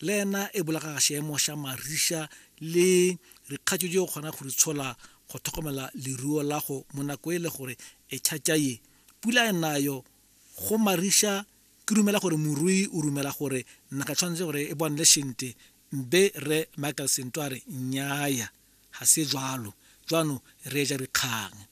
le ena e bolaga ga seemo sa marisa le dikgatso tse o kgona go di tshola go tlhokomela leruo la go mo nako e le gore e tšhatša ye pula e nayo go marisa ke dumela gore morui o dumela gore naga tshwanetse gore e bonele sente mbe re michael sento a re nnyaya ga se jalo jwano re ja dikgang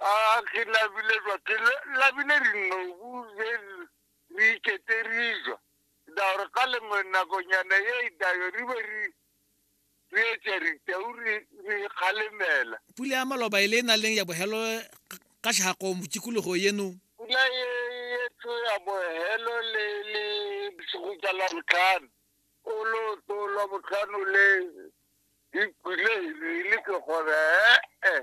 A ke labile jwa ke le- labile dinobu je re iketse re jwa daore ka lengwe nakonyana ye e dayo re be re re etša ditau re re kgalemela Pula ya maloba e le e na leng ya bohelo ga- ga tlhago mo tikologo yeno. pula ye ye tho ya bohelo le le bosigo tša labotlhano o lo to labotlhano le e kwile e le ke gore ee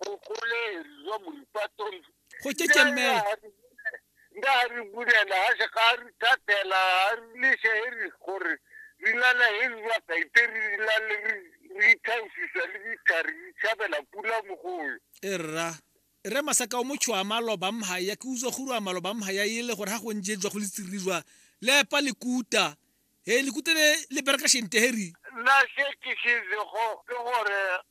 bogoleri jwa moripatong go kekemela nda re bulela ga se ga re thatela ga re lese e re gore re na le e re jwa kaiteri re na le re ithausisa le dithari re tshabela pula mogoyo e rra re masaka o motho a maloba mha ya ke utswa guru a maloba mha ya ile gore ha go nje jwa go le tsiri jwa le pa le kuta he le kutele le bereka shente heri la se ke se go ke gore